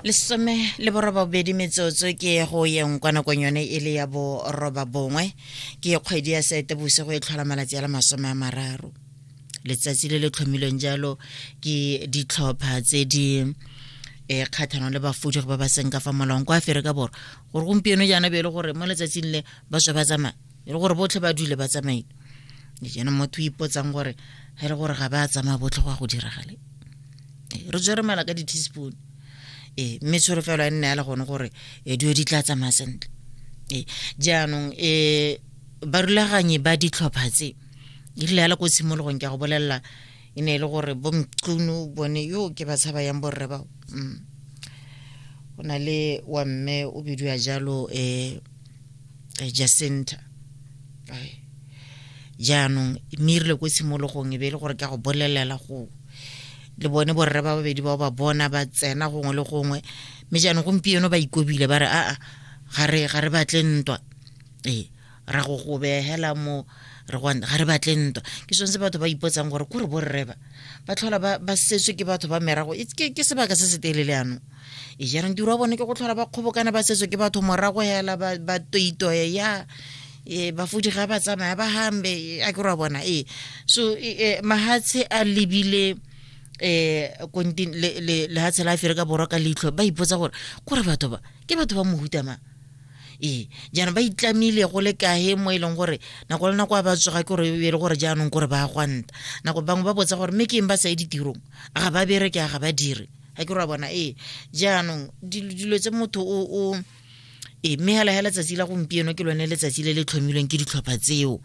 lesome le borobabedi metsotso ke go yeng kwa nakong yone e le ya boroba bongwe ke kgwedi ya sete bosigo e tlhola malatsi a le masome a mararo letsatsi le le tlhomilweng jalo ke ditlhopha tse di um eh, kgatlhanong le bafudigi ba ba seng ka fa molaong kwa aferika borwa gore gompieno jaana be e le gore mo letsatsing le ba tswa ba tsamaya e le gore botlhe ba dule ba tsamaile jaanong motho o ipotsang gore ga e le gore ga ba tsamaya botlhe go ya go diragale re tswere mala ka di-teaspoon ee mme tsholofelo ya nne ya le gone gore e dio di tla tsamaya sentle ee jaanong um barulaganyi ba ditlhopha tse e rile ya le ko tshimologong ke a go bolelela e ne e le gore bomqunu bone yo ke ba tshaba yang borre bao mm. go na le wa mme o bidiwa jalo um Eh, jacinta eh, jaanong mme e rile ko tshimologong e be e le gore ka go bolelela go le bone borre ba babedi bao ba bona ba tsena gongwe le gongwe mme jaanong gompieno ba ikobile ba re aa ga re ga re batle ntwa ee ra go go behela mo re go ga re batle ntwa ke sone se batho ba ipotsang gore ko re borre ba ba tlhola ba ba setswe ke batho ba merago It's- ke ke sebaka se se telele yanong e jarang tiro wa bone ke go tlhola ba kgobokana ba setswe ke batho morago hela ba toitoe ya e ba fodi ga ba tsamaya ba hambe a ke ra bona e so e, e, mahatshe a lebile eh kontin le le le ha tshela fere ka borwa ka leitlho ba ipotsa gore go re batho ba ke batho ba mohuta ma ee jaanong ba itlamile go le kahe mo e leng gore nako le nako a ba tsoga ke gore e le gore jaanong kore ba gwanta nako bangwe ba botsa gore mme ke eng ba sa ye ditirong a ga ba bereke a ga ba dire ga ke ra bona ee jaanong dilo tse motho o ee mme hela hela tsatsi la gompieno ke lone letsatsi le le tlhomilweng ke ditlhopha tseo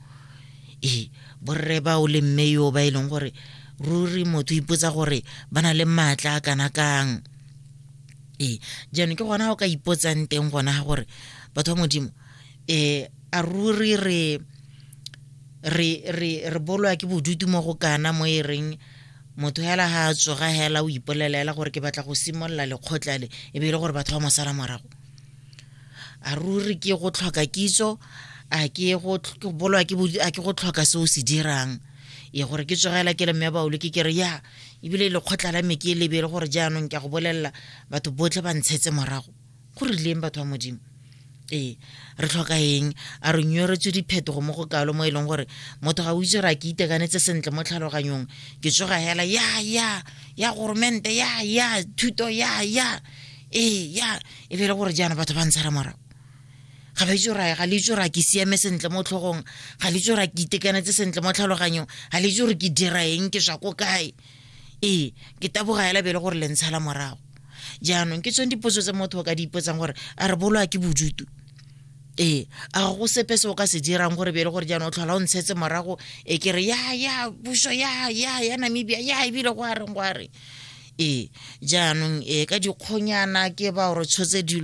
ee borre bao le mme yo ba e leng gore ruri motho ipotsa gore ba na le maatla a kana kang ee jaanong ke gona go ka ipotsang teng gona ga gore batho ba modimo um a ruri re re re re bolwa ke bodutu mo go kana mo e reng motho hela ha a tsoga hela o ipolelela gore ke batla go simolola lekgotla le e be e le gore batho ba mo sala morago a ruri ke go tlhoka kitso a ke go bolwa ke a ke go tlhoka se o se dirang ye gore ke tsogela ke le mme baolo ke kere ya ebile lekgotla la me ke lebele gore jaanong ke a go bolelela batho botlhe ba ntshetse morago go rileng batho ba modimo ee re tlhoka eng a re nyoretswe diphetogo mo go kalo mo e leng gore motho ga o itse gore a ke itekanetse sentle mo tlhaloganyong ke tsoga hela ya ya ya goromente ya ya thuto ya ya ee ya e be e le gore jaana batho ba ntshara morago ga ba itse gore ga le itse gore a ke siame sentle mo tlhogong ga le itse gore a ke itekanetse sentle mo tlhaloganyong ga le itse gore ke dira eng ke swa ko kae ee ke taboga ya labele gore le ntshala morago jaanong ke tsone dipotso tse motho o ka di ipotsang gore a re boloa ke bojutu ee a ga go sepe se o ka se dirang gore bele gore jaanong o tlhola o ntshetse morago e ke re ya ya puso ya ya ya namibia ya ebile go a reng go a reng ee jaanong ee ka dikgonyana ke ba gore tshotse dilo